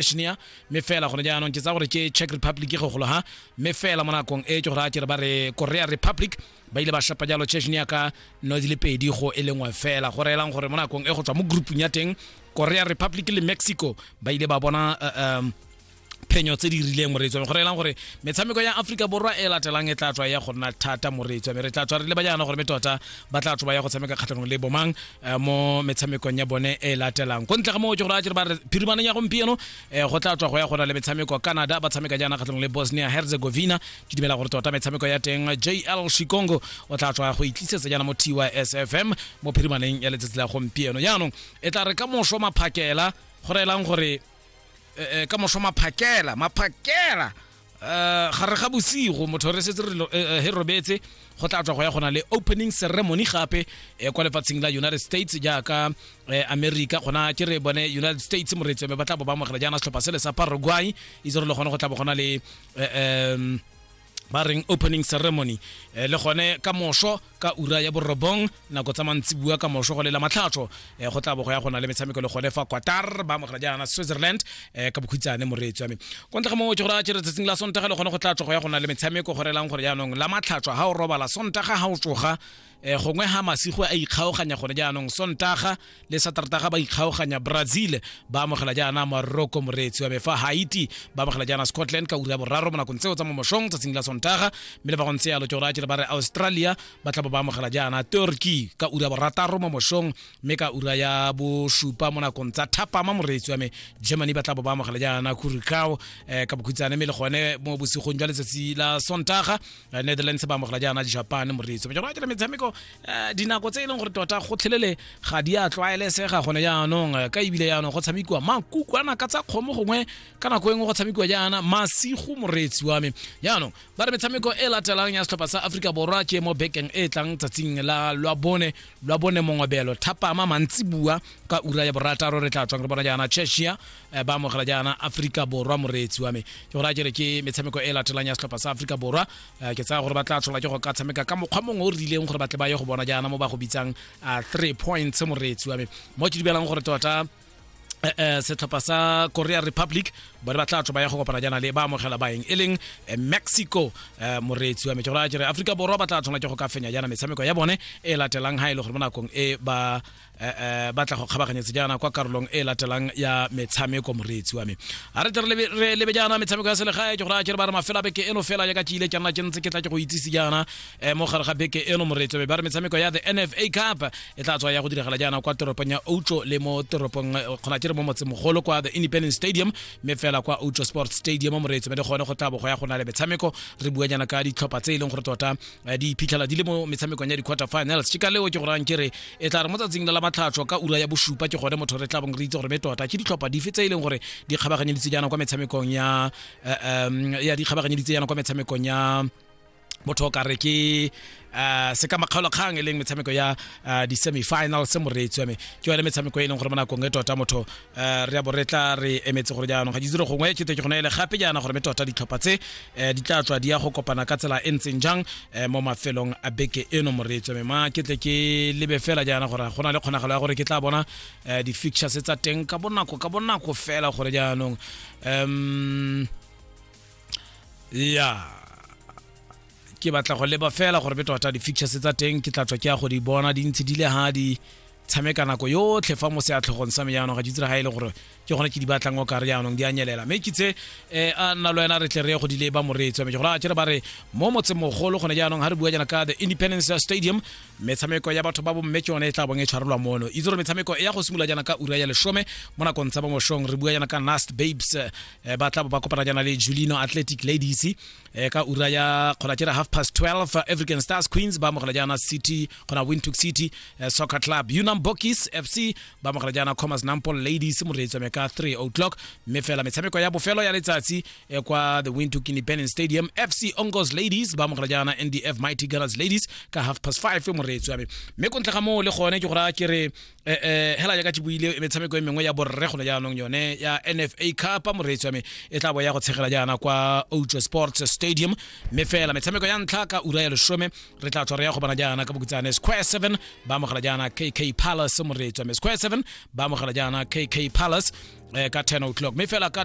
Bosnia mme fela gone jaanong ke tsa gore ke Czech Republic go golo ha mme fela mo nakong e ke gore a kere ba re Korea Republic ba ile ba shapa jalo Chechnya ka no di le pedi go e lengwe fela go reelang gore mo nakong e go tswa mo groupung ya teng Korea Republic le Mexico ba ile ba bona uh, um, phenyo tse di rileng moreetswame go reelang gore metshameko ya aforika borwa e latelang e tla tswa ya go nna thata moreetswame re tla tswa re le ba jaana gore me tota ba tla tswa ba ya go tshameka kgatlhanong le bomang eh, mo metshamekong ya bone e latelang ko ntle ga moo ke gore a kere ba re phirimaneng ya gompieno eh, go tla tswa go ya gona le metshameko canada ba tshameka jaana kgatlhanong le bosnia herzegovina ke dumela gore tota metshameko ya teng jl shikongo o tla tswa go itlisetsa jaana mo tysfm mo phirimaneng ya letsatsi la gompieno jaanong e tla re ka moso maphakela go reelang gore eh, eh, ka moso maphakela maphakela um gare ga bosigo motho re setse he robetse go tla tswa go ya gona le opening ceremony gape um kwa lefatsheng la united states jaaka um america gona ke re bone united states moreetsi ba tla bo ba amogela jaana setlhopha sele sa paraguay itse re le gone go tla bo gona le um ba reng opening ceremony le gone ka moso ka ura ya borobong nako tsa mantsibua ka moso go lela matlhatso eh, go tla bo go ya go na le metshameko le gone fa qatar ba amogela jaana switzerland eh, ka bokhutshane moreetsi wa me ko ntle ga mongwe ke gore a tšere tsatsing la sontaga le gone go tla tsogo ya go na le metshameko go relang gore jaanong la matlhatso ga o robala sontaga ga o tsoga eh, gongwe ga masigo a ikgaoganya gone jaanong sontaga le saterata ga ba ikgaoganya brazil ba amogela jaana morocco moreetsi wa me fa haiti ba amogela jaana scotland ka ura ya boraro mo nakong tseo tsa mo mošong tsatsing la sontaga mme le ba go ntse yalo tšora tšere ba re australia ba tla bo ba amogela jaana turkey ka ura ya borataro mo mošong mme ka ura ya bosupa mo nakong tsa thapama moreetsi wa me germany ba tla bo ba amogela jaana kurikao eh, ka bokhutsane mme le gone mo bosigong jwa letsatsi la sontaga eh, netherlands ba amogela jaana japan moreetsi wa me tšora tšere metshameko eh, dinako tse e leng gore tota gotlhelele ga di a tlwaelesega gone jaanong eh, ka ebile jaanong go tshamekiwa makukwana ka tsa kgomo gongwe ka nako e nngwe go tshamekiwa jaana masigo moreetsi wa me jaanong ba re metshameko e latelang ya setlhopha sa aforika borwa ke mo bekeng e e tlang tsatsing la lwa bone lwa bone mongwebelo thapama mantsi bua ka ura ya borataro re tla tswang re bona jaana cheshia eh, ba amogela jaana aforika borwa moreetsi wa me ke gore a kere ke metshameko e latelang ya setlhopha sa aforika borwa Eh, ke tsaya gore ba tla tshola ke go ka tshameka ka mokgwa mongwe o rileng gore ba tle ba ye go bona jaana mo ba go bitsang eh, three points moreetsi wa me mo ke dubelang gore tota eh, setlhopha sa korea republic bone ba tla tswa ba ya go kopana jaana le ba amogela baeng e leng mexico moreetsi wa me ke gore a kere aforika borwa ba tla tshwanela ke go ka fenya jaana metshameko ya bone e latelang ga e le gore mo nakong e ba eh, eh, batla go kgabaganyetse jaana kwa karolong e latelang ya metshameko moreetsi wa me a re tle re lebe jaana metshameko ya selegae ke gore a kere ba re mafela beke eno fela jaaka ke ile ke nna ke ntse ke tla ke go itsise jaana um mo gare ga beke eno moreetsi wa me ba re metshameko ya the nfa cup e tla tswa ya go diragala jaana kwa toropong ya outlo le mo toropong kgona eh, ke re mo motsemogolo kwa the independent stadium mme fela kwa outlo sports stadium moreetsi wa me le gone go tla bogo ya go na le metshameko re bua jaana ka ditlhopha tse e leng gore tota eh, di iphitlhela di le mo metshamekong ya di-quarter finals ke ka leo ke gorang ke re e tla re mo tsatsing la la matlhatlho ka ura ya bosupa ke gone motho re tla bong re itse gore me tota ke ditlhopha dife tse e leng gore di kgabaganyeditse jaana kwa metshamekong ya um ya di kgabaganyeditse jaana kwa metshamekong ya motho o ka re ke uh, se ka makgaolokgang e leng metshameko ya uh, di-semifinal se moreetsi wa me ke yone metshameko e leng gore mo nakong e tota motho um re a bo re tla re emetse gore jaanong ga ditsere gongwe ke teke gone ele gape jaana gore me tota ditlhopha tse um di tla tswa di ya go kopana ka tsela e ntseng jang um mo mafelong a beke eno moreetswe me ma ke tle ke lebe fela jaana gore go na le kgonagalo ya gore ke tla bona um di-fictures tsa teng ka bonako ka bonako fela gore jaanong um ya ke batla go leba fela gore be tota di-features tsa teng ke tla tswa ke ya go di bona di ntse di le ga di tshameka nako yotlhe fa mo se a tlhogong sa me jaanong ga ke tsira ga e le gore ke gone ke di batlang o ka re jaanong di a nyelela mme ke tse um a nna lo wena re tle re go di leba moreetsi wa me gore a kere ba re mo motsemogolo gone jaanong ga re bua jana ka the independence stadium metshameko ya batho ba bomme ke yone e tla bong e tshwarelwa mono itse gore metshameko e ya go simolola jana ka ura ya lesome mo nakong tsa bomoshong re bua jana ka nast babes ba tla ba kopana jana le julino athletic ladies e ka ura ya kgona kere half past 12 eh, african stars queens ba amogela jaana city kgona wintook city eh, soccer club unam bokis fc ba amogela jaana commerce nampol ladies moreetso me ka 3 o'clock mme fela metshameko ya bofelo ya letsatsi eh, kwa the wintook independent stadium fc ongos ladies ba amogela jaana ndf mighty girls ladies ka half past 5 moreetso ya me mme kontle ga moo le gone ke go raya kere eh, eh, hela jaaka ke buile metshameko e mengwe ya borre gone jaanong yone ya nfa cup moreetsi wa me e tla bo ya go tshegela jaana kwa outswa sports stadium mme fela metshameko ya ntlha ka ura ya lesome re tla tswa re ya go bana jaana ka bokutsane square 7 ba amogela jaana kk palace moreetsi wa me square 7 ba amogela jaana kk palace eh, ka 10 o'clock mme fela ka